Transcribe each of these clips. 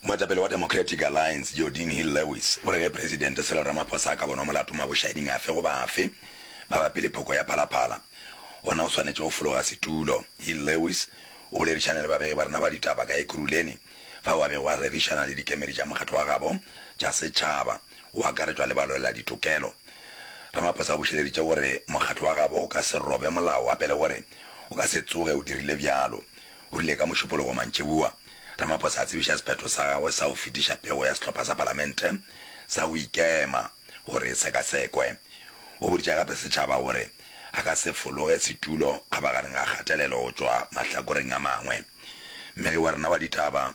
Moetapele wa Democratic Alliance, Jordine Hill Lewis, o re ge Presidente Cyril Ramaphosa a ka bonwa molato mabošaeding afe goba afe mabapi le phoko ya Phalaphala, gona o swanetše go fologa setulo. Hill Lewis o boledišane le babegi ba rena ba ditaba ka Ekurhuleni fao a bego a rerišana le dikemedi tša mokgatlo wa gabo tša setšhaba, go akaretšwa le balweladitokelo. Ramaphosa o bušeleditše gore mokgatlo wa gabo o ka se robe molao a pele gore o ka se tsoge o dirile bjalo. O rile ka Mošupologo mantšiboa, Ramaphosa a tsebiša sephetho sa gagwe sa go fetiša pego ya sehlopha sa palamente sa go ikema gore e sekasekwe. O boditše gape setšhaba gore a ka se fologe setulo kgabaganeng ga kgatelelo go tšwa mahlakoreng a mangwe. Mmegi wa rena wa ditaba,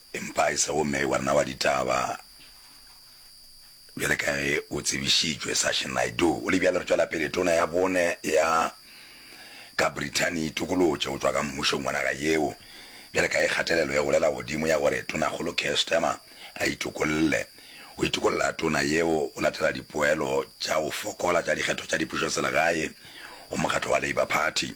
Empa e sego Mei wa nna wa ditaba. Bjale ka ge go tsebišitšwe, Sachin Naidu o le bjale re tšwela pele tona ya bone ya ka Britain e itokolotše go tšwa ka mmušong wa naga yeo bjale ka ge kgatelelo e golela godimo ya gore Tonakgolo Keir Starmer a itokolle. Go itokolla tona yeo go latela dipoelo tša go fokola tša dikgetho tša dipušoselegae go mokgatlo wa Labour Party.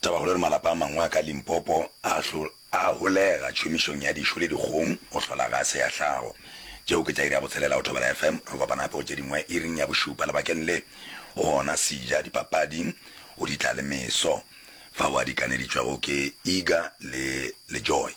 Tabakgolo le malapa a mangwe a ka Limpopo a a holega tšhomišong ya dišo le dikgong go hlola gase ya hlago. Tšeo ke tša iri ya botshelela go Thobela FM. Re kopana gape go tše dingwe iring ya bošupa lebakeng le, gona Sija, dipapadi, o di tla le meso, fao a di kaneditšwego ke Iga le le Joy.